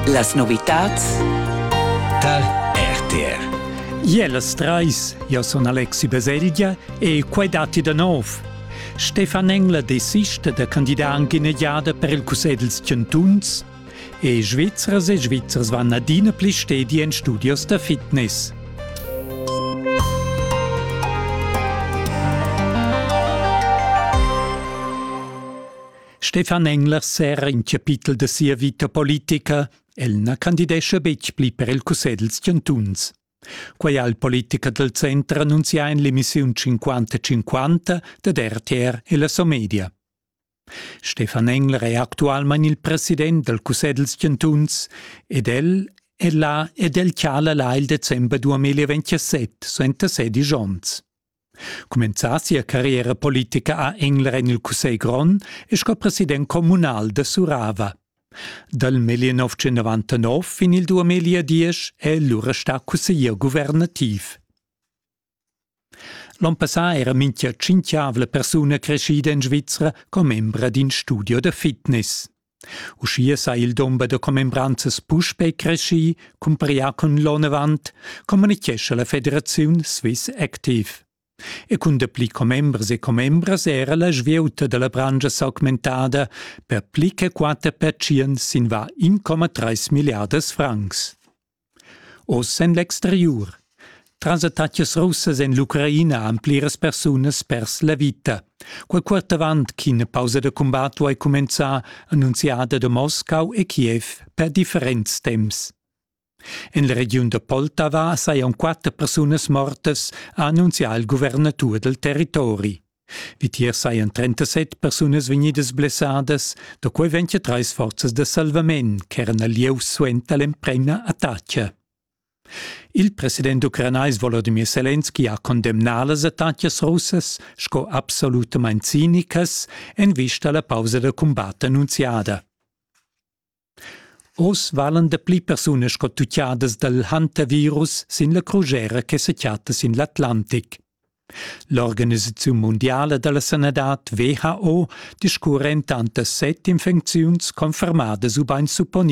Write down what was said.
Las novitads tal RTR. Jelas treis, io son Alexi Baselgia e quai dati da nov. Stefan Engler desista da candidar anche in giada per il Cussegl dels Chantuns e Svizzers e Svizzers vanno adina pli stedi in studios da fitness. Stefan Engler serra in chapitel da sia vita politica, el na candidescha betg pli per il cussegl dels chantuns. Quai ha il politica del center annunzià in l'emissiun 50-50 dad RTR e la Somedia. Stefan Engler è actualmain il president del cussegl dels chantuns ed el è là ed el chala là il december 2027 suenter sedisch onns. Cumenzà sia carriera politica a Engler en il Cussegl grond e sco president communal da Surava. Dal 1999 fin il 2010 è lura stà cusseglier guvernativ. L'on passà era minchia tschinchiavla persuna creschida in Svizra commembra d'in studio da fitness. Uschia sa il dumber da commembranzas puspè creschì, cumparà cun l'onn avant, communitgescha la federaziun Swiss Active. E cun dapli commembers e commembras era la svieuta da la branscha s'augmentada per pli che quatter pertschient sin va 1,3 milliardas francs. Oz en l'exteriur. Tras attacas russas en l'Ucraina han pliras persunas pers la vita. Quel quart avant ch'ina pausa da combat duai cumenzar, annunziada da Moscau e Kiev per differents temps. En la regiun da Poltava sajan quatter persunas mortas, ha annunzià il guvernatur dal territori. Vitier sajan 37 persunas vegnidas blessadas, da quai vegn che trais forzas da salvament ch'eran al lieu suenter l'emprema attacca. Il president ucranais Volodymyr Selenski ha condemnà las attacas russas sco absolutamain cinicas en vista alla pausa da cumbat annunziada. Oz valan dapli persunas sco tutgadas dal hantavirus sin la crugera che sa chatta sin l'Atlantic. L'organisaziun mundiala da la sanadad WHO discurra entant da set infecziuns confermadas ubain supponidas.